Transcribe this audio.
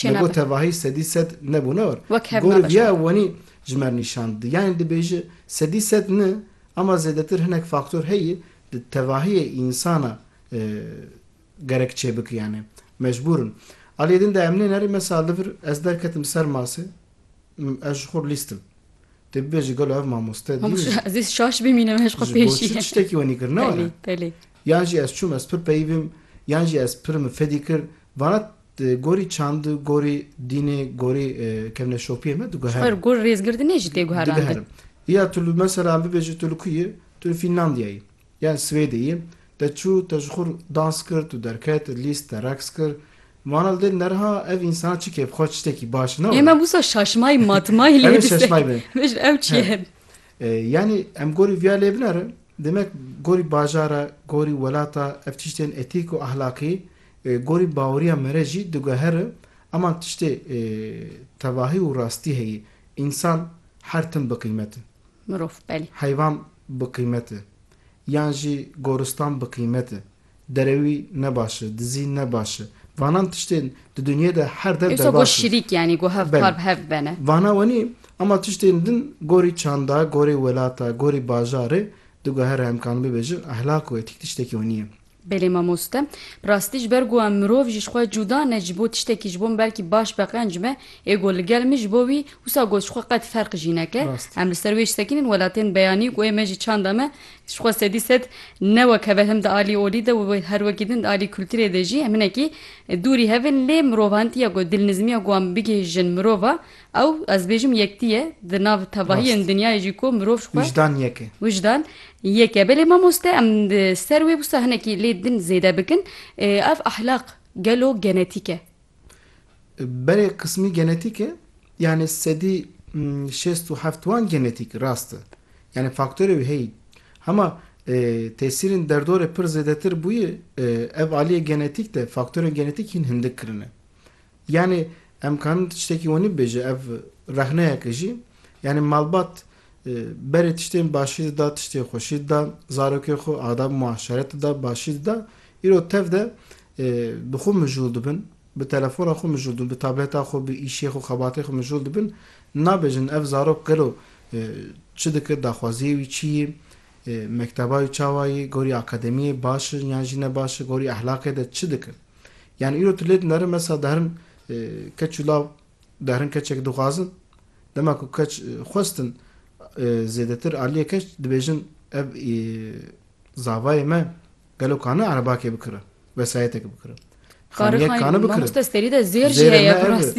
Çê nabe. Li gor tevahî sedî sed ne bû ne war. Wek hev nabe. Gorî viya wenî ji mer nîşan dide. Yanî dibêje sedî sed ne ama zêdetir hinek faktor heye di tevahiyê însana gerek çê bike yanî mecbûr in. Aliyê din de em nê nerê mesa li vir ez derketim ser masê ez ji xwe lîst im. Tu bibêje gelo ev mamoste dîn e? Ez ê şaş bimînim ez xwe pêşî. Ji bo çi tiştekî wenî kir ne were? Yan jî ez çûm ez pir peyî bim yan jî ez pirim fedî kir vana Di gorî çand, gorî dînê, gorî kevneşopiyê me diguherim. Ji xwe gorî rêzgirdinê jî tê guherandin. Diguherim. Ya tu li mesela bibêje tu li ku yî? Tu li Fînlandiyayê yî yan Swêdê yî. Te çû, te ji xwe re dans kir, tu derket, lîst, te reqs kir. Wana li dêrî neriha ev însan çi kêf xweş, tiştekî baş ne were. Ême wisa şaşmayî matmayî lê dise. Min jî ew çi ye? Yanî em gorî viya lê binerin. Demek gorî bajara, gorî welata ev tiştên etîk û ahlakî Gorî baweriya me re jî digohere ema tiştê tevahî û rastî heye, însan her tim bi qîmet e. Mirov, belê. Heyvan bi qîmet e. Yan jî goristan bi qîmet e. Derewî ne baş e, dizî ne baş e. Vanan tiştên di dinyê de her dev derbas in. Îsa got şirîk yanî got hev kar bi hev bibene. Vana wenî ema tiştên din gorî çanda, gorî welata, gorî bajarê digohere em karin bibêjin ehlak û etîk tiştekî wenî ye. Belê mamoste, bi rastî ji ber ku em mirov ji xwe cuda ne ji bo tiştekî ji bo min belkî baş be qenc be, ê got li gel min ji bo wî wisa got ji xwe qet ferq jî neke. Em li ser wê ji sekînin welatên beyanî ku ê me ji çanda me ji xwe sedî sed ne wek heve him di alî olî de û her wekî din di alî kulturê de jî em hinekî dûrî hev in lê mirovan tîya ku dilnizmiya ku wan bigihîjin mirova Ew, ez bêjim yektî ye, di nav tevahiyên dinyayê jî ku mirov ji xwe. Wijdan yek e. Wijdan yek e. Belê mamoste em di ser wê wisa hinekî lê din zêde bikin. Ev ahlaq gelo genetîk e? Belê qismî genetîk e. Yanî sedî şêst û heft wan genetîk rast e. Yanî faktorê wî heyî. Hema tesîrên derdorê pir zêdetir bûye ev aliyê genetîk de faktorên genetîk hîn hindik kirine. Yanî em karin tiştekî wanî bibêje ev rexneyeke jî yanî malbat berê tiştên başî dida, tiştên xweşî dida, zarokên xwe adab û muaşeret dida, başî dida, îro tev de bi xwe mijûl dibin, bi telefona xwe mijûl dibin, bi tableta xwe, bi îşê xwe, xebatê xwe mijûl dibin, nabêjin ev zarok gelo çi dike, daxwaziyê wî çi yî, mekteba wî çawa yî, gorî akademiyê baş in yan jî ne baş in, gorî ehlaqê de çi dikin. Yani îro tu lê dinere mesela derin keç û law derin keçek dixwazin dema ku keç xwestin zêdetir aliyê keç dibêjin ev zavayê me gelo kane erebakê bikire vesayetek bikire. Karê xanî mamoste serî de zêr jî heye bi rastî.